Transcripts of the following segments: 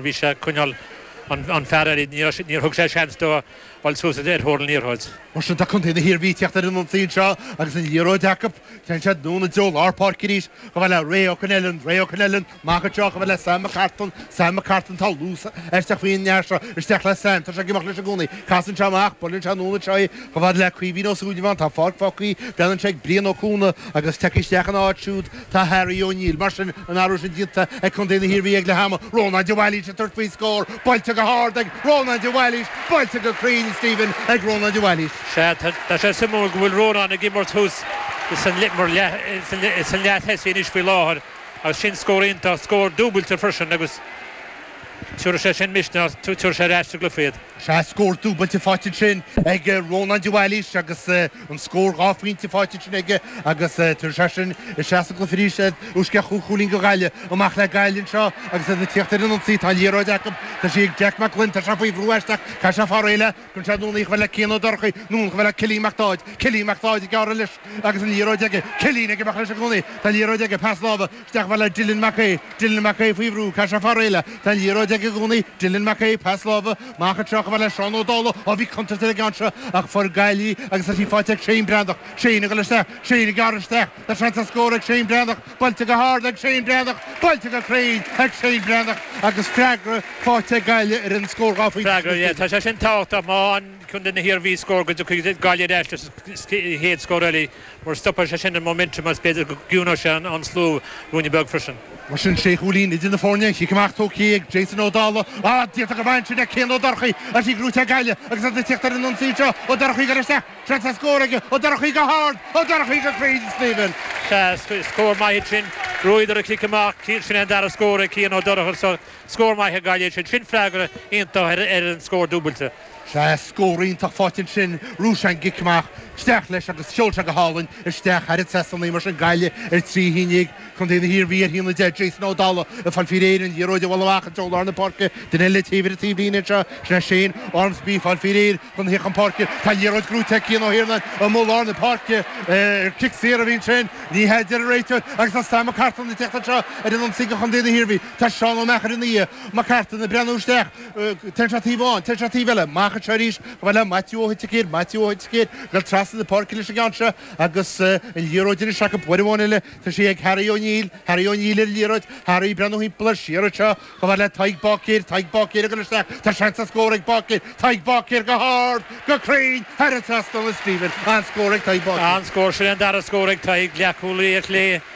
bhí sé ag coinneáil an fear eile, níor thug sé seans dó dul suas ar thóir an liathróid. Mar sin, tá contae na hIarmhí ag teacht ar an ionsaí anseo agus an liathróid acu. Téann siad anonn i dtreo lár páirce arís, chomh fada le Ray Ó Coinellan, Ray Ó Coinellan, amach anseo, chomh fada le Sam McCartan, Sam McCartan, tá luas aisteach faoin bhfear seo, isteach le Sam, tá sé ag imeacht leis i gcónaí, casann sé amach, buaileann sé anonn anseo é, chomh fada le Caoimhín Ó Súilleabháin, tá an pháirc fágtha, dála an scéil, ag Brian Ó Cuana agus tagtha isteach ina áit siúd, Tá Harry O'Neill, mar sin, an t-athrú sin déanta ag Contae na hIarmhí ag leath ama, Rónán de Bhailís ag tabhairt faoin scór, buailte go hard ag Rónán de Bhailís, buailte go cruinn, Stephen, ag Rónán de Bhailís. Sea, tá sé suimiúil go bhfuil Rónán ag imirt thuas san leath tosaigh anois faoi láthair agus sin scór iontach, scór dúbailte freisin agus tiúrfaidh sé sin misneach, tiúrfaidh sé ar ais sa gcluiche iad. Sea, scór dúbailte faighte ansin ag Rónán de Bhailís agus an scór dhá phointe faighte ansin aige agus tá siadsan ar ais sa gcluiche arís ó sceith cúig chúilín go Gaillimh. Amach le Gaillimh anseo agus iad ag tíocht ar an ionsaí. Tá an liathróid acu. Tá sí ag Jack Mac Gloinn. Tá sé faoi bhrú aisteach. Caithfidh sé fáil réidh léi, cuireann sé anonn í chomh fada le Cian Ó Dorchaí. Anonn chomh fada le Cillín Mac Dáid. Cillín Mac Dáid ag gearradh leis agus an liathróid aige. Cillín ag imeacht leis i gcónaí. Tá an liathróid aige. Pas láimhe. Isteach chomh fada le Dillon Mac Aoidh, Dillon Mac Aoidh faoi bhrú, caithfidh sé fáil réidh léi, tá an liathróid aige i gcónaí, Dillon Mac Aoidh, pas láimhe amach anseo chomh fada le Seán Ó Dálaigh, á bhí contúirt ar an gceann seo ach fuair Gaillimh í agus tá sí faighte ag Shane Breathnach, Shane ag dul isteach, Shane ag gearradh isteach, tá seans ar scór ag Shane Breathnach, buailte go hard ag Shane Breathnach, buailte go cruinn ag Shane Breathnach agus freagra faighte ag Gaillimh ar an scór dhá phointe sin, Stephen. Tá sé sin tábhachtach má fhaigheann contae na hIarmhí scór go dtiocfaidh Gaillimh ar ais leis an chéad scór eile. Mar stopann sé sin an momentum is b'fhéidir go gciúnóidh sé an slua ruainne beag freisin. Mar sin, sé chúilín idir na foirne, cic amach tugtha ag Jason Ó Dálaigh, ámh, faighte go maith ansin ag Cian Ó Dorchaí tá sí gnóite ag Gaillimh agus iad ag teacht ar an ionsaí anseo, Ó Dorchaí ag dul isteach, seans ar scór aige, Ó Dorchaí go hard, Ó Dorchaí go cruinn, Stephen! Sea, scór maith ansin, ghnóthaíodar an cic amach, sin é an dara scór ag Cian Ó Dorchaí, scór maith ag Gaillimh sin, sin freagra iontach ar an scór dúbailte. Sea, scór iontach faighte ansin, ghnóthaigh sé an cic amach, isteach leis agus sheol sé go hálainn isteach thar an trasnán í, mar sin Gaillimh ar trí haon déag, contae na hIarmhí ar a haon 10, Jason Ó Dála ag fáil faoi réir an liathróid a bhualadh amach i dtreo lár na páirce, duine eile taobh ar an taobhlíne anseo, sin é Shane Ormsby ag fáil faoi réir chun teacht chun páirce, tá an liathróid gnóite ag Cian Ó hIarnáin amuigh lár na páirce, ar cic saor a bhí ansin, ní hea deir an réiteoir agus tá Sam Mac Carthaigh ag teacht anseo ar an ionsaí do chontae na hIarmhí, tá Seán Ó Meachair ina dhiaidh, Mac Carthaigh ag breathnú isteach. Téann sé taobh amháin, téann sé taobh eile, amach anseo arís chomh fada le Maitiú Ó hUiticír, Maitiú Ó hUiticír, ag dul trasna na páirce leis an gceann seo, agus an liathróid anois acu uair amháin eile, tá sí ag Harry O'Neill, Harry O'Neill ar an liathróid, Harry ag breathnú thimpeall air siar anseo, chomh fada le Tadhg Báicéir, Tadhg Báicéir ag dul isteach, tá seans ar scór ag Báicéir, Tadhg Báicéir go hard, go cruinn, thar an trasnán, Stephen, an-scór ag Tadhg Báicéir. An-scór, sin an dara scór ag Tadhg, leathchúlaí ar chlé,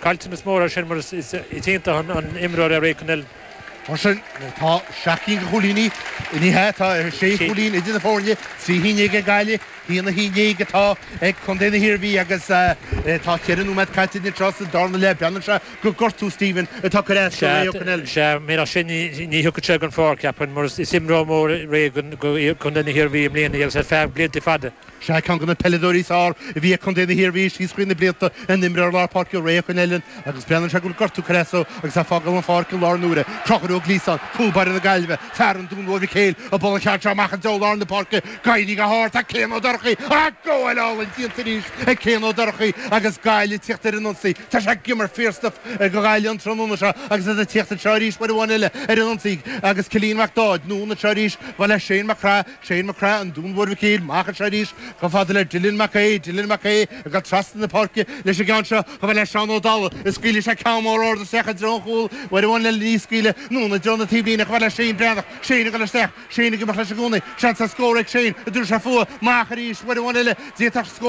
Caillteanas mór, mar sin, mar is iontach an imreoir é Ray Connellan. Mar sin, tá seacht gcinn de chúilíní, ní hea, tá sé chúilín idir na foirne, trí cinn déag ag Gaillimh, haon a haon déag atá ag Contae na hIarmhí agus tá ceithre nóiméad caite anois sa darna leath. Breathnaíonn sé gur gortú, Stephen, atá ag cur as do Ray Connellan. Sea, murach sin ní thiocfadh sé den pháirc, cheapfainn, mar is imreoir mór é Ray do Chontae na hIarmhí i mbliana agus ar feadh blianta fada. Sé ceann de na peileadóirí is fearr a bhí ag Contae na hIarmhí síos trí na blianta an t-imreoir lár páirce Ray Connellan agus breathnaíonn sé go bhfuil gortú ag cur as dó agus é ag fágáil an pháirc i láthair na huaire. Conchúr Ó Gliasáin, cúl báire na Gaillmhe, fear an Dúin Mhóir Mhic Héil, ag bualadh an cheann seo amach i dtreo lár na páirce. Ag éirí go hard tá Cian Ó Dorchaí ach gabháil álainn déanta arís ag Cian Ó Dorchaí agus Gaillimh ag tíocht ar an ionsaí. Tá sé ag imirt fíorstuif do Ghaillimh an tráthnóna seo agus iad ag tíocht anseo arís uair amháin eile ar an ionsaí agus Cillian Mac Dáid anonn anseo arís. Chomh fada le Seán Mac Craith. Seán Mac Craith, an Dúin Mhóir Mhic Héil, amach anseo arís, chomh fada le Dillon Mac Aoidh, Dillon Mac Aoidh, ag dul trasna na páirce leis an gceann seo, chomh fada le Seán Ó Dálaigh, is scaoileann sé ceann mór ard isteach i dtreo an chúil, uair amháin eile, ní hea, scaoileann anonn i dtreo na taobhlíne, chomh fada le Shane Breathnach, Shane ag dul isteach, Shane ag imeacht leis i gcónaí, seans ar scór ag Shane, an dtabharfaidh sé faoi, amach arís, uair amháin eile, d'fhéadfadh scór